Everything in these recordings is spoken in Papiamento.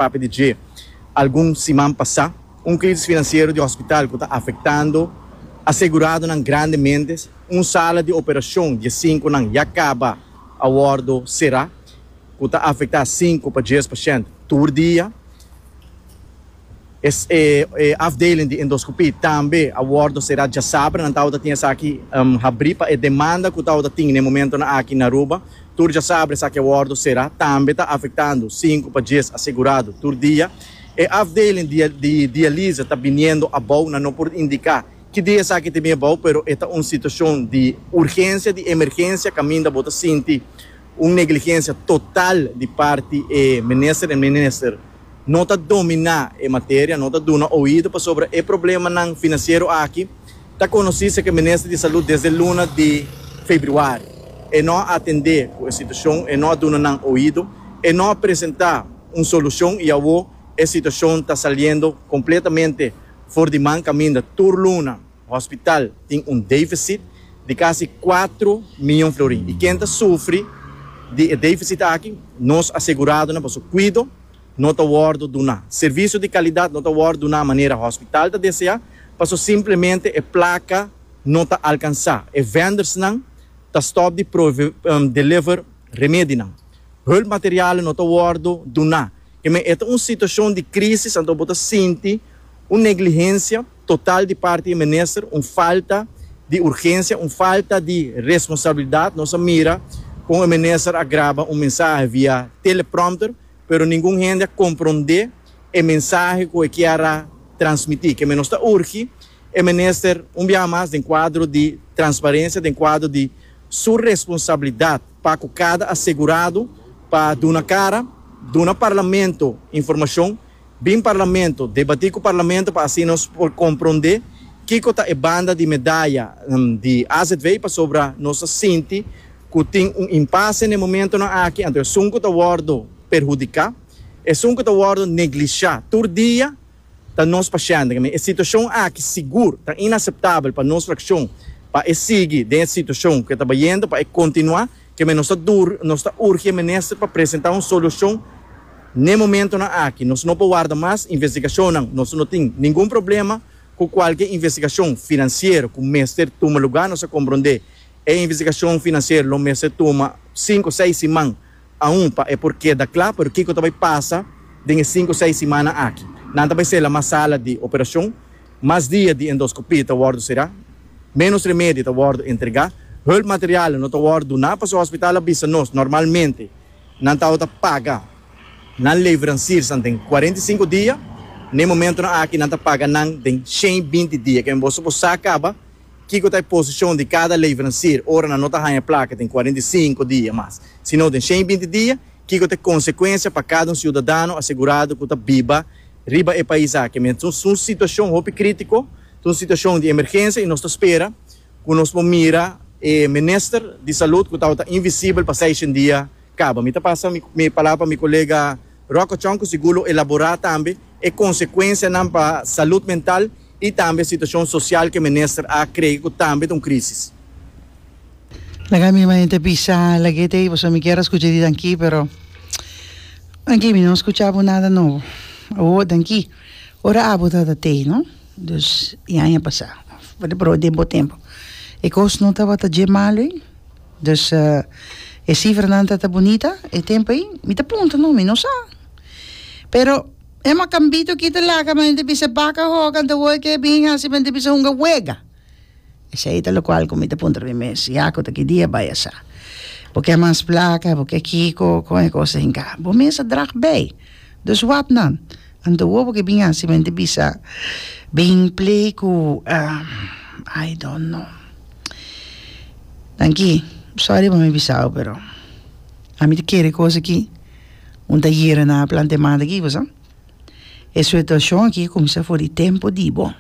papia di dje algun siman pasá, un krísis finansiero di hòspital ku ta afektando aseguradonan grandemente, un sala di operashon di e sinkunan ya kaba a wòrdu será, ku ta afektá sinku pa djes pashènt tur dia. E afdeling di endoskopí tambe a wòrdu será djasabra. Nan tabata tin esaki habrí pa e demanda ku tabata tin na e momentunan aki na Aruba, Tur djasabri esaki awòrdu será tambe ta afektando sinku pa djes asegurado tur dia. E afdeling di dialise ta biniendo abou, nan no por indiká ki dia esaki ta bin abou, pero e ta un situashon di urgensia, di emergensia kaminda bo ta sinti un negligensia total di parti e minister. E minister no ta dominá e materia, no ta duna oido pasobra e problemanan finansiero aki, Ta conoci seca Minister di Salud desde luna di Februari. E no a atende cu e situacion, e no a duna nan oido, e no a presenta un solucion y awo e situacion ta saliendo completamente for di man caminda tur luna hospital tin un deficit di casi cuatro miyon florin y ken ta sufri di e deficit aki nos aseguradonan pasobra cuido no ta wordo duna, servicio di calidad no ta wordo duna manera hospital ta desea. paso simplemente e placa no ta alcansa. E vendersnan ta stop di deliver remedinan. Hulpmaterialen no ta wordo duna. Kemey e ta un situacion di crisis anto bo ta sinti un negligencia total di parti di e minister, un falta di urgencia, un falta di responsabilidad. Nos a mira con e minister a graba un mensahe via teleprompter. pero ningun hende a komprondé e mensahe ku e kier a transmití. Keme nos ta urgi e minister un biaha mas den kuadro di transparensia, den kuadro di su responsabilidat pa ku kada asegurado pa duna kara, duna parlamento informashon Bin Parlamento, debatí ku Parlamento pa asina nos por komprondé kiko ta e banda di medaya di AZV pasobra nos ta sinti ku tin un impase n'e momentunan aki anto esun ku ta wòrdu perhudiká, esun ku ta wòrdu neglishá tur dia ta nos pashènt. E situashon aki sigur ta inaseptabel pa nos frakshon pa e sigui den e situashon ku e ta bayendo pa e kontinuá Keme nos ta dur, nos ta urge Minister pa presenta un solucion n'e momentonan aki. Nos no por warda mas investigacionnan. Nos no tin ningun problema cu cualke investigacion financiero cu mester tuma lugar. Nos a compronde e investigacion financiero lo mester tuma cinco, seis siman aun pa e por keda cla. Pero kico ta bay pasa den e cinco, seis simannan aki? Nan ta bay sela mas sala di operacion? Mas dia di endoskopia ta wòrdu será, ménos remedi ta wòrdu entregá, hulpmaterialen no ta wòrdu duná pasobra hospital a bisa nos normalmente nan tabata paga nan leveranciersan den cuarenta y cinco dia, n'e momentonan aki nan ta paga nan den shen binti dia. Kende bo supo sa kaba kiko ta e posishon di kada leverancier ora nan no ta haña plaka den cuarenta y cinco dia mas sino den shen binti dia, kiko ta e konsekuensia pa kada un siudadano asegurado ku ta biba. Riba e pais aki mes ta un situacion hopi critico, ta un situacion di emergencia y nos ta spera cu nos por mira e minister di salud cu tabata invisibel pa seishen dia caba. Mi ta pasa mi palabra pa mi colega Rocachon cu sigur lo elabora tambe e consecuencianan pa salud mental i tambe e situashon sosial ku e minister a kree ku tambe ta un krisis. Laga mi maña ta bisa lag'et ei pasobra mi kier a skucha di danki pero danki mi no skucha bo nada nobo awo danki ora abo tabata t'ei no dus e aña pasa for di broe den bo tempo e kos no tabata dje malo ei dus e sifranan tabata bunita e tempo ei mi ta puntra no mi no sa pero. E makambito ki ta laga men di bisa baka hoga ta wor ke bin hasi men di bisa hunga wega. Esei ta lokual ku mi ta puntra mi mes, ya ku ta ki dia bai a sa? Bo ke mas plaka, bo ke kiko, kon e kos ta hinka? Bo mes a drag bei, dus wap nan. Anto wor bo ke bin hasi men di bisa bin plei ku I don't know. Danki, sorry bo mi bisabo pero ami ta kere e kos aki. Un ta yera na plan te manda aki kusa? E suituashon aki kuminsá for di tempu di bo.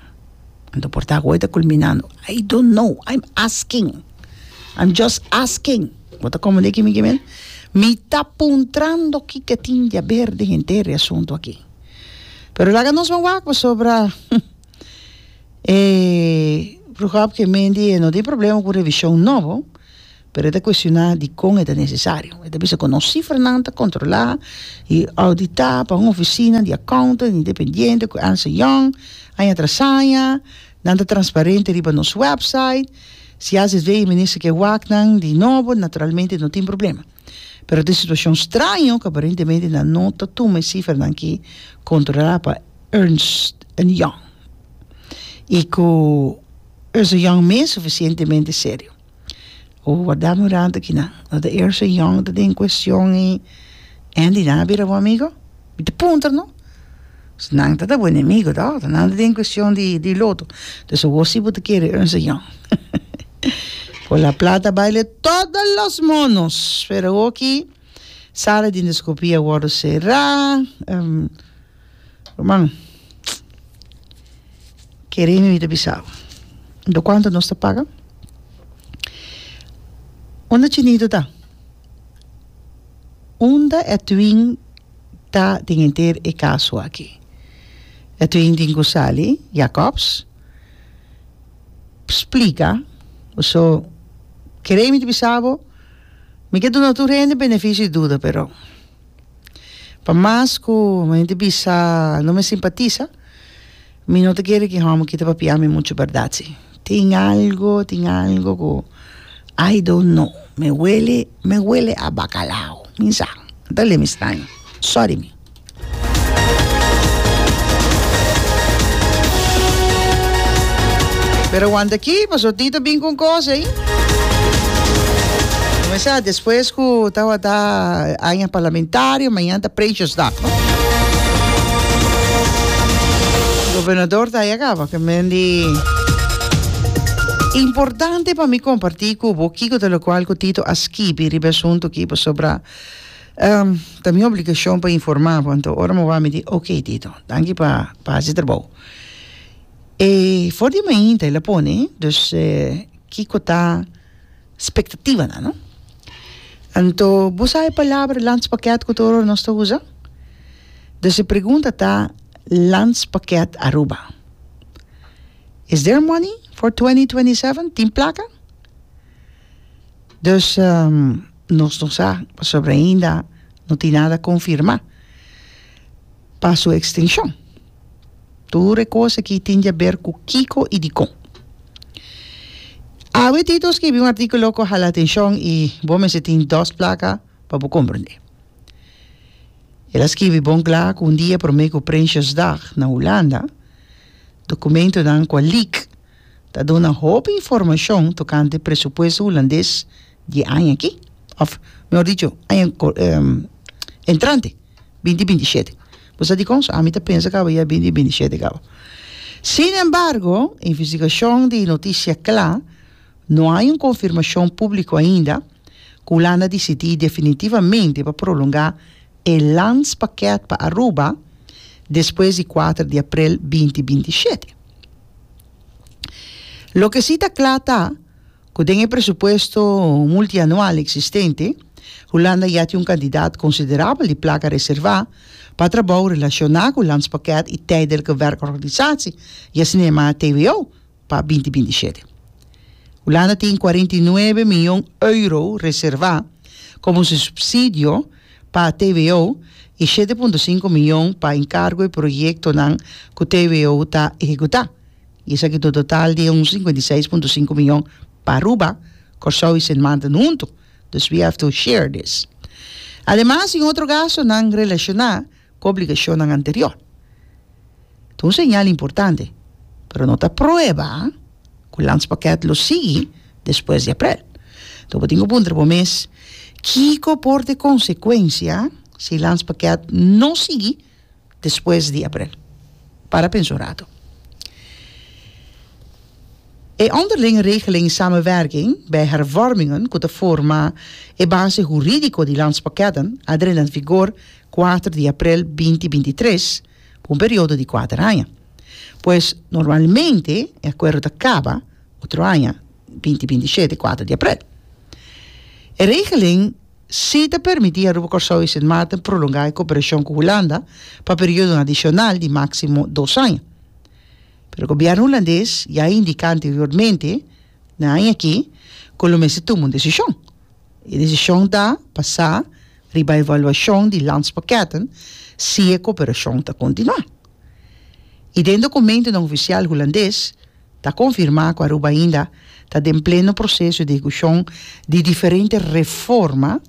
Anto por ta ku e ta kulminando. I don't know, i am asking, i am just asking. Bo ta komende aki mi kimin? Mi ta puntrando kiko tin di aber den henter e asuntu aki. Pero laga nos bo wak pasobra e bruhòpke Mindy e no tin problema ku revishon nobo. pero e ta kuestioná dikon e ta nesesario. E ta bisa ku nos sifranan ta kontrolá i ouditá pa un ofisina di akountant independiente ku Ernst and Young. Aña tras aña, nan ta transparente riba nos wèpsait. Si azv e minister ke wak nan di nobo, naturalmente no tin problema. Pero ta e situashon straño ku aparentemente nan no ta tuma e sifranan ki kontrolá pa Ernst and Young i ku Ernst and Young mes sufisientemente serio. Wardando e ranta kinan. Lo ta Ernst and Young ta den cuestion y Andy nan a bira bo amigo? Mi ta puntra no. Pues nan ta ta bo enemigo ta otro. Nan ta den cuestion di di loto. Pues awor si bo ta kere Ernst and Young. Con la plata baile todo los monos pero awor aki sala di endoscopia a wordo cera. Ruman, kere mi mi ta bisa bo. Do kuantu nos ta paga? Unda Chinito ta? Unda Edwin ta den henter e kaso aki? Edwin tin ku sali Jacobs splika, so kere mi ta bisa bo, mi ke duna tur hende benefisio di duda pero. Pa mas cu hende bisa no me simpatiza, mi no ta kere cu e homber kita papia mi mucho berdad si. Tin algo, tin algo cu I don't know, me wele, me wele a bacalao, mi sa, no ta lemi straño, sorry mi. Pero aguanta aki, paso tin ta bin cu un cos ey. Lo me sa, despues cu tawata. Aña Parlamentario, mañana ta Prinsjesdag no. Gobernador ta ayaka pa ke men di Importante pa mi komparti ku bo kiko ta lokual ku Tito a skibi riba e asuntu aki pasobra ta mi obligashon pa informá bo. Anto ora mi wak mi di ok Tito, danki pa pa hasi trabou. E for di mainta el a pone, dus kiko ta spectativanan. Anto bo sa e palabra landspaket cu ta ora nos ta usa? Dus e pregunta ta Landspaket Aruba. Is there money for twenty twenty seven? Tin placa? Dus nos no sa pasobra ainda no tin nada confirma pa su extencion. Tur e kos aki tin diaber ku kiko i dikon. Awe Tito skibi un artikulo ku hala atenshon i bo mester tin dos plaka pa bo komprendé. El a skibi bon kla ku un dia promé ku Prinsjesdag na Hulanda, dokumentunan ku a leak ta duna hopi informashon tokante e presupuesto hulandes di e aña aki, òf mihor dicho, aña entrante. bin di binti shete. Bo sa di kon? So ami ta pensa kaba i a bin di binti shete kaba. Sin embargo, e investigashon di notisia kla, no hay un konfirmashon públiko ainda, ku Hulanda disidí definitivamente pa prolongá e lanspakèt pa Aruba despues di kuater di aprel binti binti shete. Loke sí ta kla ta. Cu den e presupuesto multianual existente, Hulanda ya tin un cantidad considerabel di placa reserva pa trabou relaciona cu Landspakket y Tijdelijke Werkorganisatie, y asina yamaa TWO, pa binti binti shete. Hulanda tin cuarenta y nuebe mion euro reserva como su subsidio pa TWO y shete punto cinco mion pa encargo e proyectonan cu TWO ta ehecuta. I esaki ta un total di un sinkenta i seis punto sinku miyon pa Aruba, Kòrsou i Sint Maarten huntu, dus we have to share this. Ademas tin otro gastonan relashoná ku obligashonnan anteriò. Ta un señal importante, pero no ta prueba ku Landspakket lo sigui despues di Aprel. Enton bo tin ku puntra bo mes, kiko por ta e konsekuensia si Landspakket no sigui? Despues di Aprel. Para pensa un ratu. E onderling regeling samenwerking bij hervormingen ku ta forma e base hurídiko di Landspakketten a drenta na vigor kuater di Aprel binti binti tres pa un periodo di kuater aña. Pues normalmente e akuerdo ta kaba otro aña binti binti shete kuater di Aprel. E regeling. sí ta permití Aruba, Kòrsou i Sint Maarten prolongá e koperashon ku Hulanda pa periodo adishonal di máksimo dos aña. Pero gobièrnu hulandes ya a indiká anteriormente na aña aki ku lo mester tuma un desishon. E desishon ta basá riba evaluashon di Landspakketten si e koperashon ta kontinuá. I den dokumentonan ofisial hulandes, Ta konfirmá ku Aruba ainda ta den pleno proseso di ekushon di diferente reforma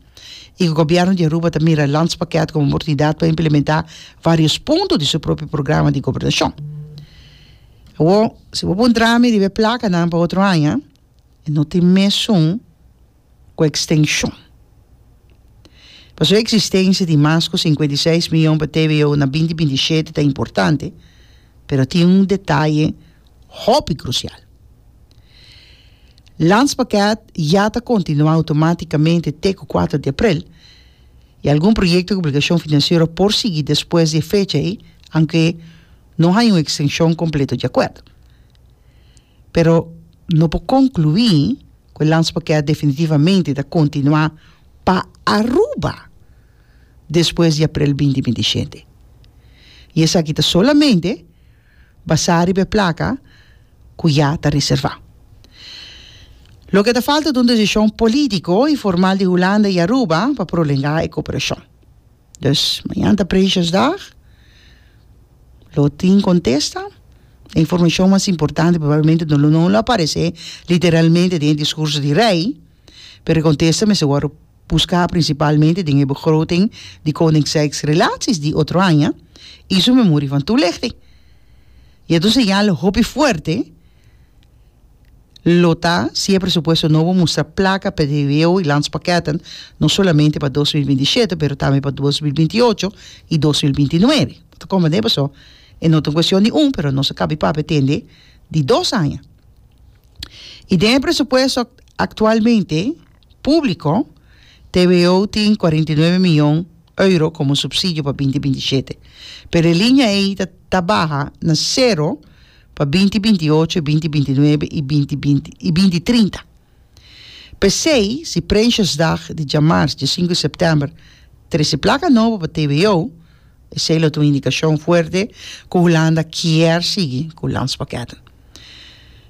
i ku Gobièrnu di Aruba ta mira e Landspakket komo un oportunidat pa implementá vários punto di su propio programa di gobernashon. Awor, si bo pon drami riba e plakanan pa otro aña, e no tin mesun. ku ekstenshon. Pasobra e eksistensia di mas ku sinkuenta i seis miyon pa TVO na binti binti i shete ta importante, pero tin un detaye hopi krusial. Landspakket ya ta kontinuá outomátikamente te ku kuater di aprel, i algun proyekto ku obligashon finansiero por sigui despues di e fecha ei, aunke no haya un ekstenshon kompleto di akuerdo. pero no por conclui cu e landspoker definitivamente ta continua pa Aruba despues di aprel binti binti shete. Y esaki ta solamente basa riba e placa cu ya ta reserva. Loke ta falta ta un decision politico y formal di Hulanda y Aruba pa prolenga e cooperacion. Dus mañan ta Prinsjesdag, lo tin contesta. E informacion mas importante probablemente no lo, no lo aparece literalmente den e discurso di Rey, pero e contesta mester worde busca principalmente den e begroting di Koning Sex Relaties di otro aña y su memorie van toelichting. Y e ta un señal hopi fuerte. lo ta si e presupuesto nobo mustra plaka pa TVO i landspakketten no solamente pa dos mil binti shete pero tambe pa dos mil binti ocho i dos mil binti nuebe bo ta komprende paso e no ta un kuestion di un pero nos a kap'e pap'e tende di dos aña i den e presupuesto aktualmente. Públiko, TVO tin cuarenta i nuebe miyon euro komo supsidio pa binti binti shete, pero e liña ei ta ta baha na sero pa binti binti ocho, binti binti nuebe i binti binti i binti trinta. P'esei, si Prinsjesdag di djamars, dje sinku di sèptèmber, trese plaka nobo pa TVO, esei lo ta un indikashon fuerte ku Hulanda kier sigui ku landspakketten.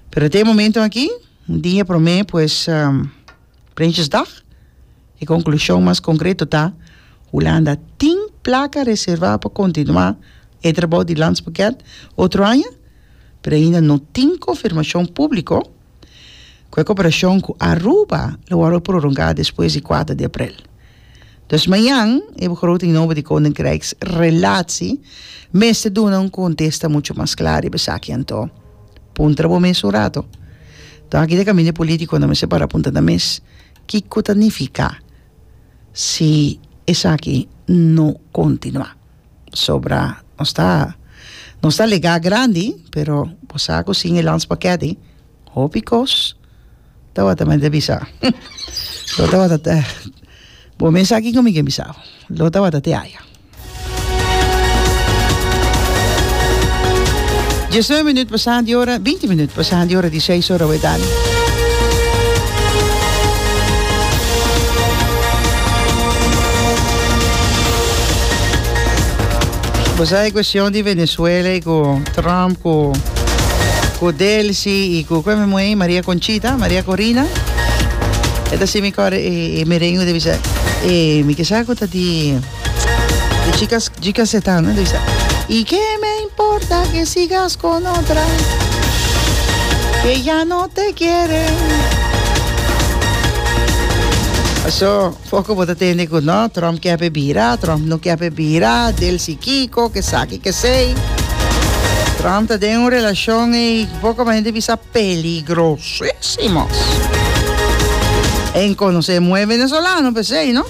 Pero te e momentu aki. Un dia promé pues Prinsjesdag. E konklushon mas konkreto ta, Hulanda tin plaka reservá pa kontinuá e trabou di Landspakket otro aña, pero ainda no tin konfirmashon públiko ku e koperashon ku Aruba lo wòrdu prorongá despues di kuater di aprel. Dus mañan e begroting nobo di Koninkrijksrelatie mester duna un kontesta muchu mas kla riba esaki anto. Puntra bo mes un rato. Nton aki ta kaminda e politikonan mester para puntra nan mes, Kiko ta nifiká si esaki no kontinuá? Pasobra nos ta nos ta legá grandi, pero bo sa ku sin e landspakèt ei, Hopi kos tabata mente bisa lo tabata te bo me sa kiko mi ke bisa lo tabata te aya Diesnueve minut pasa di ora binti minut pasa di ora di seis ora we dani Bo sa e cuestion di Venezuela y cu Trump cu, cu Delcy y cu cu mi muhey Maria Conchita, Maria Corina. Eta si mi core e, e merengue de bisa. E mi kesa cu ta di de chicas chicas eta, no de bisa. Y qué me importa que sigas con otra que ya no te quiere. Paso Foco bo ta tende cu no, Trump kier pe bira, Trump no kier pe bira, del si kico, kesaki kesey. Trump ta den un relacion ey, boca bay hende bisa peligrosisimo. En conoce muhe venezolano pesey, no?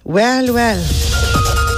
Well, well.